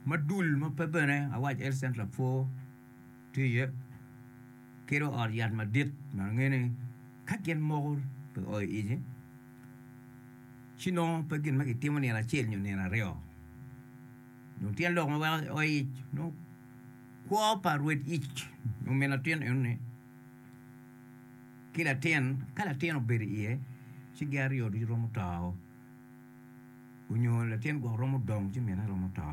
ma dul ma pe bene awac Health Centre lapwo tye iye ki dong ot yat madit ma angeyo ni ka gin moko pe oo iye ci nongo pe gin ma kitimo nino acel nyo nino aryo dong tyen lok ma weko oo ic nongo kwo pa rwed ic nyo min latin enoni ki latin ka latin obedo iye ci gin aryo ducu romo to. onyo latin gwok romo dongo ci mine romo to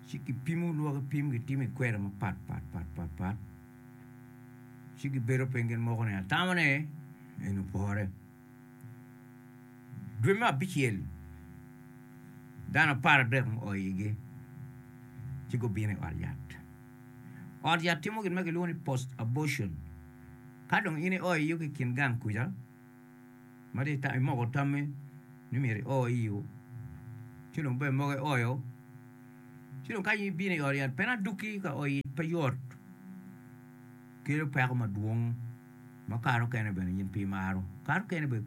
ci gipimo lwak ki pim gitimo i kweri mapat pat pat pat pat ci gibedo piny gin moko ni atamo ni en opore dwe me abicel dano apar adek muo iyigi ci gubino i ot yat ot yat timo gin ma kilwongo ni post abortion ka dong in io iyigi i kin gang kuca mati ta imoko tammi ni myero i o iyo ci dong bene mogo i oyo ci dong ka in ibino i ot yat pena duki ka o ic pe yot kelo peko madwong ma kare okene bene in pe imaro kare okene bene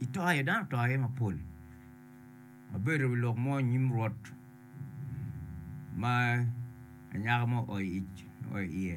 itoyo dano otoyo iye mapol abedo i lok mo nyim rwot ma anyaka mo oyo ic oyo iye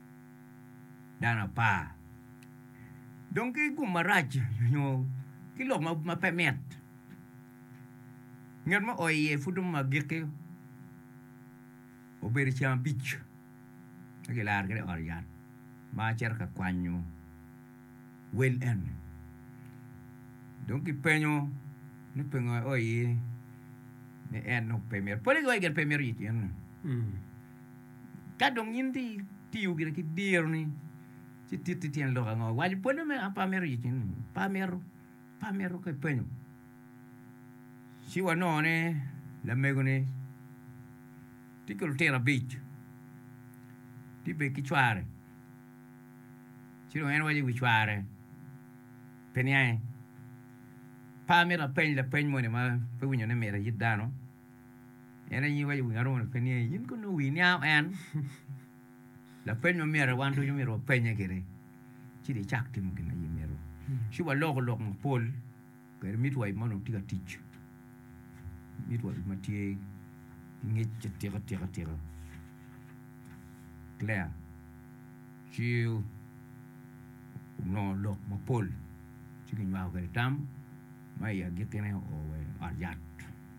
dano apar dong ki gum marac nyo ki lok ma pe mit ngat ma oo iye pud dong agikki obedo ceng abic ci gilaro kede i ot yat ma acito ka kwanyo wel eni dong ki penyo ni pingo oo iye ni en dong pe mito pole ki waci gin pe mito yit yen-ni Ka dong in itiyo gire ki dironi ci titi tyen lok ango? Iwaco pwonye me a pe amito yec in ni pe amito pe amito ka ipenyo ci wanongo ni lamegoni tye ki lutino abic tye bene ki cware ci dong en waco i wi cware pe niange pe amito apeny lapeny moni ma pe winyo ni myero ayit dano. En aye waco i wi Aruna pe ni in kono nongo wii niango en? Lapeny ma myero wan ducu myero wapenye gire ci dong icak timo gin ma in imito. Ci waloko lok mapol kwede midwife ma onongo tye ka tic, midwife ma tye ki ngec atika tika tika Claire ci onongo lok mapol ci kinywako kwede tam. ma i agikkine oo wa i ot yat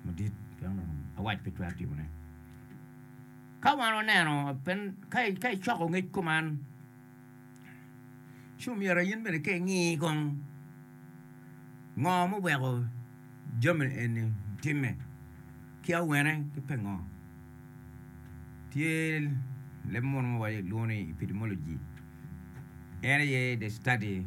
madit pien onongo awac pe twero timone. Ka wan waneno, ka icoko ngec kuman, ci omyero in bene ka ingi kong ngo ma oweko jami eni timme ki awene ki pingo. Tye leb munu ma walwongo ni epidemiology en aye the study.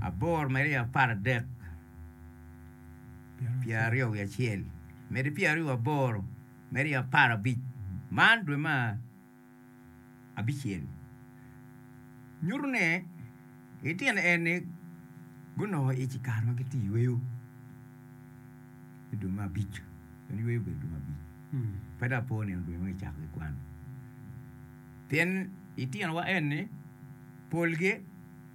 aboro medde i apar adek pyeraryo wiye acel medde pyeraryo wa boro medde i apar abic man dwe ma abicel nyuto ne itino en ni gunongo ic i kare ma gitye yweyo idwe ma abic en yweyo obedo dwe ma abic pe dong apo nino dwe ma kicako ki kwan pien itino wa eni polgi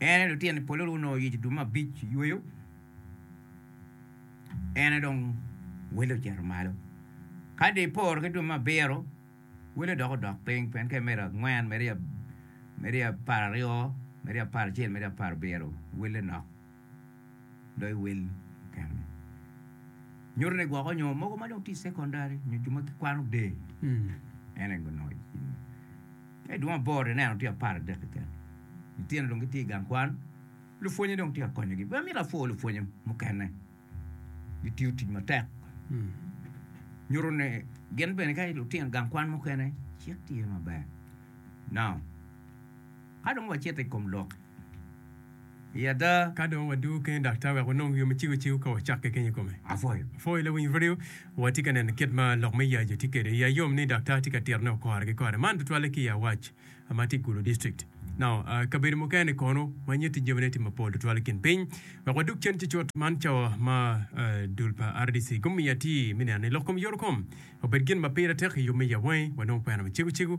En aye lutino i polo gunongo yec dumo abic i yweyo, en aye dong wele ocito malo. Ka dong iporo ki dumo abiro, wele dok odok piny pien ka imedo angwen medo i apar aryo, medo i apar acel, medo i apar abiro, wele nok. dok iwel kekeni. Nyuto ni gwoko nyo mogo ma dong tye i secondary nyo jo ma gikwano der. En aye onongo icim. Ka idwong aboro ineno tye apar adek keken. Litino dong gitye i gang kwan. Lupwonye dong tye ka konyogi. Be amito apwo lupwonye mukene. Gitiyo tic matek. Nyuto ni gin bene ka lutino gang kwan mukene cik tye maber. Now, ka dong wacito i kom lok I ada, ka dong wadwogo kene daktar wek wanong yo me ciko cik-gu ka wacak keken i kome, apwoyo lawiny ryo watye ka neno kit ma lok me yacu tye kwede. Iya yom ni daktar tye ka titone woko kare ki kare, man tutwalle ki i Awac ma tye i Gulu District. Nao, kabedo mukene kono ma nyutti jamine tye mapol tutwal i kin piny. Wek wadug cen cucut, man cawa ma dul pa RDC gumiyo atir me neno ni lok kom yorokom obed gin ma pire tek i yub me yawangi. Wanongo kwena me ciko cik-gu.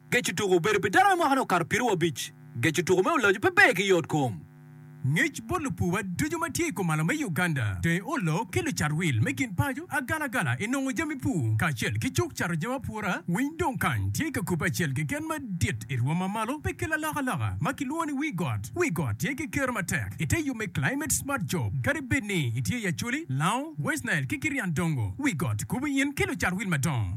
Geco tuko obedo pi dano me mwakane okato piero abic. Geco tuko me Olojo pe ber ki yot kom. Ngec bot lupuwa ducu ma tye i komalo me Uganda, tenge olo ki lucat wil me gin paco agalagala i nongo jami pur kacel ki cuk cato jami apura. Winy dong kany tye ka kubbe acel keken madit i rwom ma malo pe ki lalokaloka ma kilwongo ni Wii Got. Wii Got tye ki kero matek i te yub me Climate Smart Job. Kadi bed ni itye i Acholi, Lao, West Nile ki Kirian Dongo, Wii Got kubo in ki lucat wil madongo.